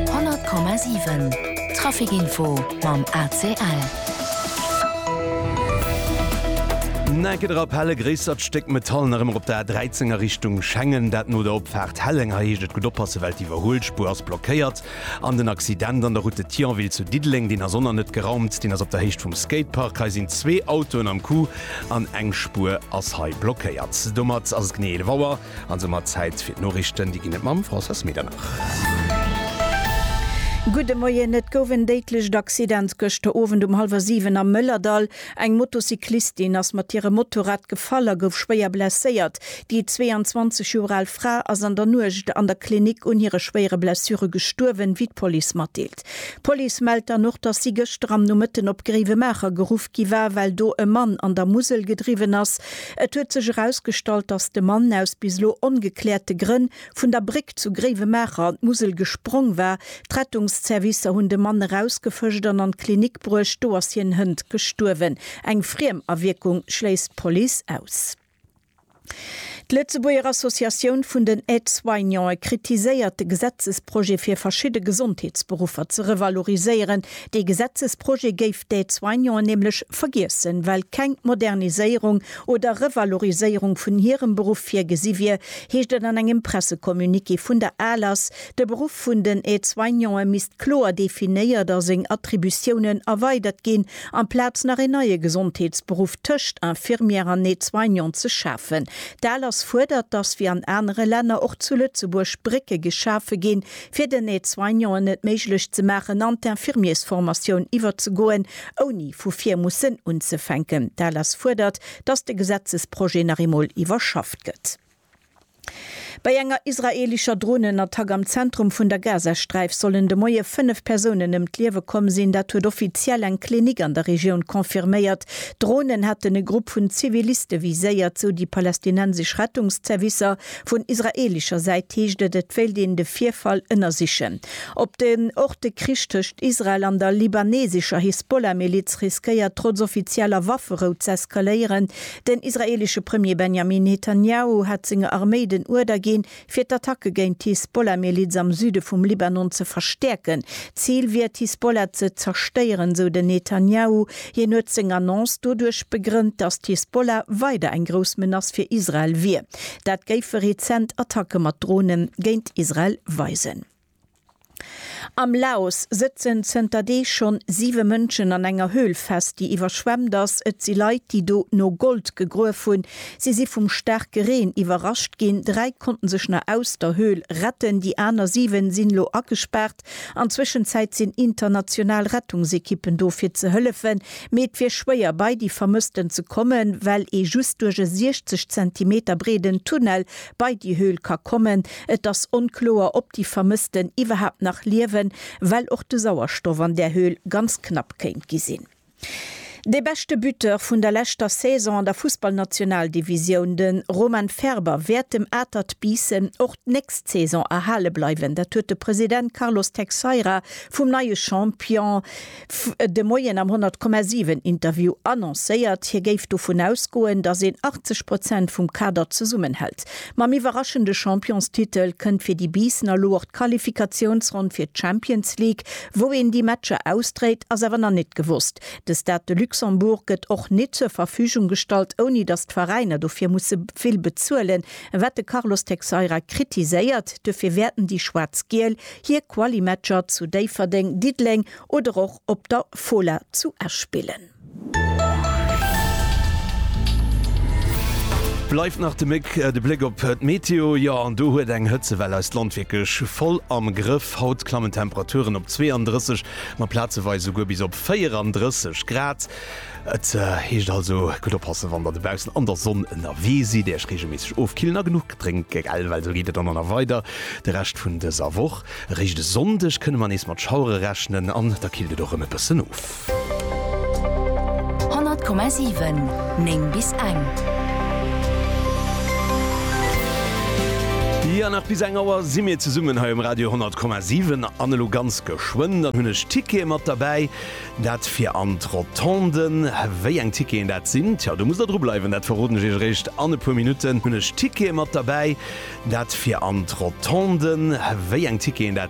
100,7 Trafic Info mam ACL. Näke drop, helle gréissert Stéck Metall nach ëmmer op der A13 a Richtung Schengen, dat no der Opfaart Helleng. Hei heescht et gutt oppassen, well d'Iwwerhuelspuer ass blockéiert. An den Accident an der Route de Thionville zu Diddeleng, deen ass oner net geraumt, deen ass op der Héicht vum Skatepark. Hei sinn zwee Autoen am Coup an eng Spuer ass hei blockéiert. Domat ass et genee 11 Auer. An soumat Zäit fir d'Noriichten. Déi ginn et mam Françoise Medernach. Gudde Moien. Et gouf en déidlecht Accident gëschter Owend um hallwer 7 am Mëllerdall. Eng Motocyclistin ass mat hirem Motorrad gefall a gouf schwéier blesséiert. Déi 22 Joer al Fra ass an der Nuecht an der Klinik un hire schwéiere Blessure gestuerwen, wéi d'Police matdeelt. D'Police mellt dann och, dass si gëschter am Nomëtten op Gréiwemaacher geruff gi war, well do e Mann an der Musel gedriwwen ass. Et huet sech erausgestallt, dass de Mann aus bis elo ongekläerte Grënn vun der Bréck zu Gréiwemaacher an d'Musel gesprong war. D'Rettungsservicer hunn de Mann erausgefëscht an an d'Klinik bruecht. Do ass hien hënt gestuerwen. Eng Friemawierkung schléisst d'Police aus. D'Lëtzebuerger Associatioun vun den Aide-soignante kritiséiert de Gesetzesprojet fir verschidde Gesondheetsberuffer ze revaloriséieren. Dee Gesetzesprojet géif d'Aide-soignanten nämlech vergiessen, well keng Moderniséierung oder Revaloriséierung vun hirem Beruff virgesi wier, heescht et an engem Pressecommuniqué vun der ALAS. De Beruff vun den Aide-soignante misst kloer definéiert a seng Attributiounen erweidert ginn, Amplaz nach een neie Gesondheetsberuff tëscht Infirmière an Aide-soignant ze schafen. D'ALAS fuerdert, datt wéi an anere Länner och zu Lëtzebuerg Brécke geschafe ginn, fir den Aide-soignanten et méiglech ze maachen an d'Infirmiersformatioun iwwerzegoen, ouni vu vir mussen unzefänken. D'ALAS fuerdert, datt de Gesetzesprojet nach eemol iwwerschafft gëtt. Bei enger israelischer Dronenattack am Zentrum vun der Gazasträif sollen de Moie fënnef Persounen ëm d'Liewe komm sinn. Dat huet offiziell eng Klinik an der Regioun confirméiert. D'Dronen hätten e Grupp vun Ziviliste viséiert, sou déi palästinensesch Rettungszervicer. Vun israelischer Säit heescht et, et wéilt een de Virfall ënnersichen. Op den Ort De Krich tëscht Israel an der libanesescher Hisbollah-Miliz riskéiert trotz offizieller Wafferou z'eskaléieren. Den israeelesche Premier Benjamin Netanjahu hat senger Arméi den Uerder ginn, fir d'Attacke géint d'Hisbollah-Miliz am Süde vum Libanon ze verstäerken. D'Zil wier, d'Hisbollah ze zerstéieren, sou den Netanjahu. Hien huet seng Annonce doduerch begrënnt, datt d'Hisbollah weider eng grouss Menace fir Israel wier. Dat géife rezent Attacke mat Dronen géint Israel weisen. Am Laos sëtzen zënter Deeg schonn siwe Mënschen an enger Höhl fest, déi iwwerschwemmt ass. Et si Leit, déi do no Gold gegruef hunn. Si si vum staarke Reen iwwerrascht ginn. Dräi konnten sech nach aus der Höhl retten. Déi aner siwen sinn elo agespaart. An Zwëschenzäit sinn international Rettungsekippen do fir ze hëllefen. Mee et wier schwéier bei déi Vermëssten ze kommen, well ee just duerch e 60 Zentimeter breeden Tunnel bei déi Höhl ka kommen. Et ass onkloer, ob déi Vermëssten iwwerhaapt nach liewen, well och de Sauerstoff an där Höhl ganz knapp kéint gi sinn. De beschte Buteur vun der leschter Saison an der Fussballnationaldivisioun, de Roman Ferber, wäert dem Atert Biissen och d'nächst Saison erhale bleiwen. Dat huet de President Carlos Teixeira vum neie Champion D'Fr huet de Moien am 100 Komma 7 Interview annoncéiert, hie géif dovun ausgoen, datt een 80 Prozent vum Kader zesummenhält. Mam iwwerraschende Championstitel kënnt fir déi Biissener elo och d'Qualifikatiounsronn fir d'Champions League. Wou een déi Matcher ausdréit, ass awer nach net gewosst. De Stade de Luxembourg gëtt och net zur Verfügung gestallt, ouni datt d'Veräiner dofir musse vill bezuelen, wat de Carlos Teixeira kritiséiert. Duerfir wäerten déi Schwaarz-Giel hir Quali-Matcher zu Déifferdeng, Diddeleng oder och op der Fola zu Esch spillen. Bleift nach de Méck, de Bléck op d'Meteo, jo an do huet eng Hëtzewell eist Land wierklech voll am Grëff. Haut klammen d'Temperaturen op 32, ma plazeweis esouguer bis op 34 Grad. Et heescht also gutt oppassen, wann der dobaussen an der Sonn ënnerwee sidd, Iech reegelméisseg ofkillen a genuch drénke gell, well esou geet et dann och nach weider de Rescht vun dëser Woch. Eréischt e Sonndeg kënne mer nees mat Schauere rechnen an da killt et och erëm e bëssen of. 100,7 9 bis eng. Jo, nach bis eng Auer si mir zesummen hei um Radio 100,7 an elo ganz geschwënn dann hunn ech d'Tickete mat derbäi, Dat fir an d'Rotonden. Wéi eng Ticketen dat sinn? Tjo, do musst der dru bleiwen, dat verroden ech iech eréischt an e puer Minutten. Hunn ech Tickete mat derbäi. Dat fir an d'Rotonden. Wéi eng Ticketen dat?